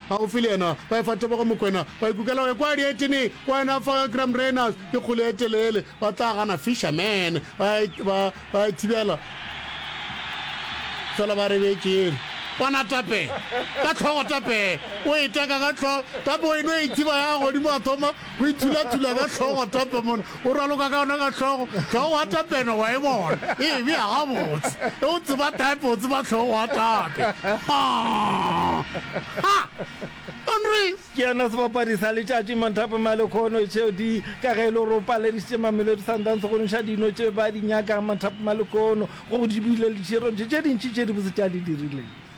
Gaufi le yena, ba efa tebogo Mokwena, ba ikukela go ekwa dietene, wena fa ga Graham Reynolds ke kgole e telele, ba tla gana Fisherman, ba e, ba, ba e thibela fela ba re betšeng. Bona tape ka tlhogo, tape o e teka ka tlhogo, tape o e no e thiba ya godimo a thoma O ithulatula ka hlogo a tapa mona, o raloka ka yona ka hlogo, hlogo wa tapeno wa e bona, e bea gabotse. E o tseba tape, o tseba hlogo wa tape. Ha! Ha! Andres! Ke yena sebapadi sa letšatši Manthape Malekhono tšeo di ka ge e le gore o paledišitše Mamelodi Sundowns go ntšha dino tše ba di nyakang Manthape Malekhono go di bile le tše dintši tše dibotse tša di dirileng.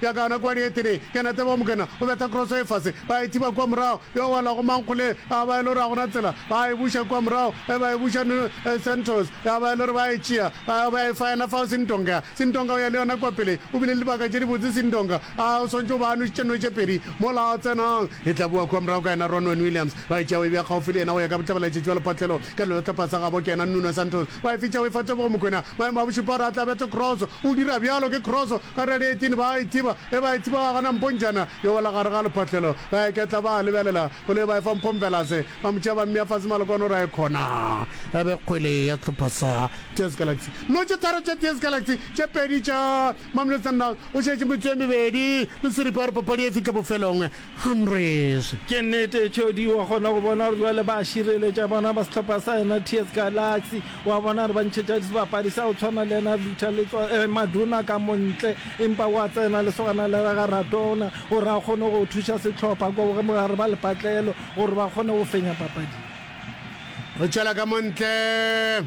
Bja gana kua Rietene, Kenete wa Mokena o betha kroso e fase, ba e thiba kua morago, yo a welago Mankgole, ya ba e le gore ga go na tsela, ba e buša kua morago, ge ba e buša New Santos, ya ba e le gore ba e tšea, ba ya ba ya e faena fao Sindonga. Sindonga o ya le yona kua pele, o bile le dibaka tše dibotse Sindonga, a o swantšwe o ba a nwešitše nwe tše pedi, mola a tsenang. E tla bowa kua morago ka yena Ronwen Williams, ba e tšea ba e bea kgaufo le yena go ya ka botlabalaetše bja lephatlelo, Ka lelotlhopha sa gabo ke yena Nuno Santos wa e fetša o e fa Tebogo Mokoena. Maemo a bošupa a re a tlabetše kroso, o dira bjalo ke kroso ka re ya dietini ba a e thiba ge ba e thiba wa gana Mpontšana yo wela gare ga lephahlelo ba e ketla ba a lebelela koloi ba e fa Mpho Mvelase ba mo tšea ba mmea fase Malokwane o re a e khona ya be kgwele ya sehlopha sa TS Galaxy. Dino tše tharo tša TS Galaxy, tše pedi tša Mamelodi Sundowns, go šetše metsotso e mebedi le seripa gore papadi e fihle bofelong. Humphreys. Ke nnete, Cody wa kgona go bona gore jwale ba šireletša bona ba sehlopha sa yena TS Galaxy. Wa bona gore ba ntšhetša sebapadi sa go tshwana le yena Victor Letswa, eh, Maduna ka montle, empa wa tsena lesogana le rega Radona gore a kgone go thuša sehlopha kwa bogare ba lepatlelo gore ba kgone go fenya papadi. Re tšwela ka montle.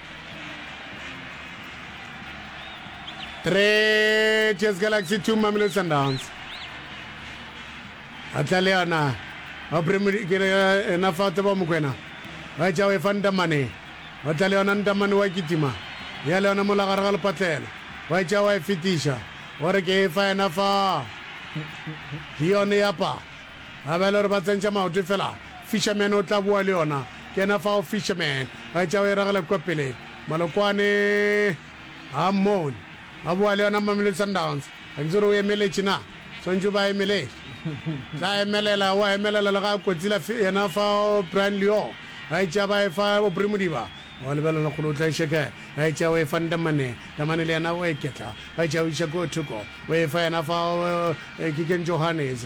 3 Cheers Galaxy 2 Mamelodi Sundowns a tla le yona a premkele ena fa tseba mokwena ba tša o efa ntamane ba tla le yona ntamane wa kitima ya le yona mola gare ga lepatlelo ba tša wa e fetiša gore ke efa ena fa ke yone yapa Ba ba e le gore ba tsentša maoto e fela, Fisherman o tla boa le yona. Ke yena fao Fisherman, a etša o e ragela kua pele. Malokwane, ga mmone. Ba boa le yona Mamelodi Sundowns. Ga ke itse gore o emeletše na? Swanetše o ba emelele. Tla emelela, o a emelela le ga a kotsila fi, yena fao Brian Leo, a etša ba e fa Aubrey Modiba. O a lebelela lekgolo o tla e šeka, a etša o e fa Ndamane. Ndamane le yena o a iketla, a etša o iša kua thoko, o e fa yena fao Kiken Johannes.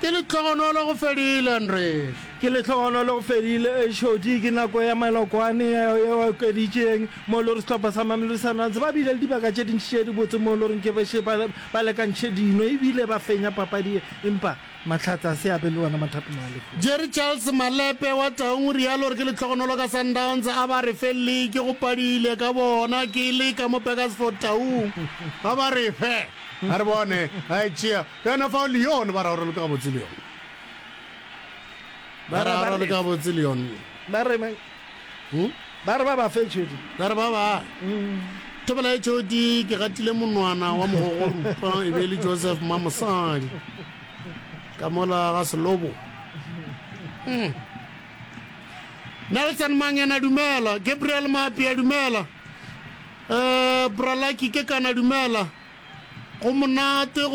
Ke lehlogonolo go fedile, Andries. Ke lehlogonolo go fedile, Xodi. Ke nako ya malokwane yeo e okeditšeng, moo e lego sehlopha sa Mamelodi Sundowns ba bile le dibaka tše dintši tše dibotse moo e lego ke bešo ba lekantšhe dino e bile ba fenya papadi ye, empa Mahlatse a se a be le wona mathapelo a lehono. Jerry Charles Malepe wa Taung o realo gore ke lehlogonolo ka Sundowns a ba re fe leke go padile ka bona ke le ka mo Burgersfort Taung ba ba re fe a re bone a e tšea Yona fao Leon ba raorelo ka gabotse Leon ba Bara ba raorelo re- ka gabotse Leon ba re ba- Hmm? ba re ba ba fe tšhodi ba re ba ba thobela e tšhodi ke gatile monwana wa mogogo rupa e be e le joseph mamosadi ka mola ga selobo Hmm. nelson mangena dumela gabriel maapea dumela um bralaki ke kana dumela go monate go